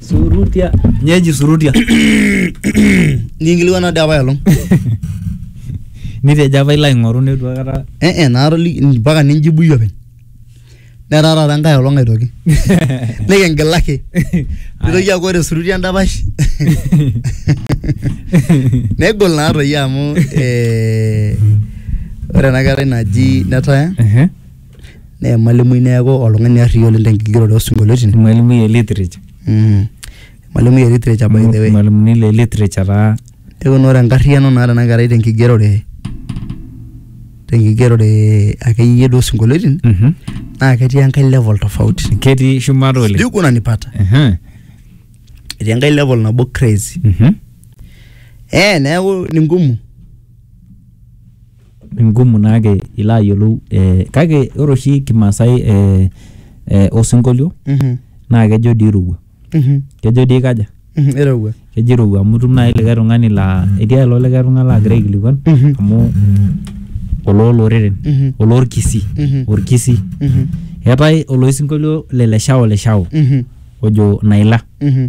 Surutia. Nyeji surutia. Ninkilikuana doi apa elong. Nitejo apa ilo aing'oru neitu aikata. Eh eh naatoliki mpaka ninjibu iyie openy. Netaa taata enkae olong aitoki. Nikingilaki. Nitoki aaku ore surutia endapash. Negol naa toi amu eh, ore ena kerai naji Netaya Ehe. naa emalimui neeku oltung'ani arriyia oleng tenkigeroto osinkolioitin Irmalimui e literature. mm. emalimui e literature by the way Irmalimuni le literature taa. neeku naa ore enkarriyiano naata ena kerai tenkigerore tenkigerore akeyie duo osinkolioitin Mhm. naa ketii enkae level tofauti Ketii shumata oleng. sijui kunanipata Ehe. etii enkae level nabo crazy Mhm. eh neeku ni ngumu Ngumu naake ilo ayiolou eh, kake ore oshi kimaasai eh, eh, osinkolio Mhm, naa kejo dii irowua mhm, kejo dii kaja mhm, irowua kejo irowua amu itum naaji likae tung'ani laa etii ake ilo likae tung'ani laagira aikilikuan Mhm. amu olooloreren Mhm. oloorkisii Mhm. orkisii Mhm, eetae oloisinkolio le leshao leshao mhm, ojo naila mhm.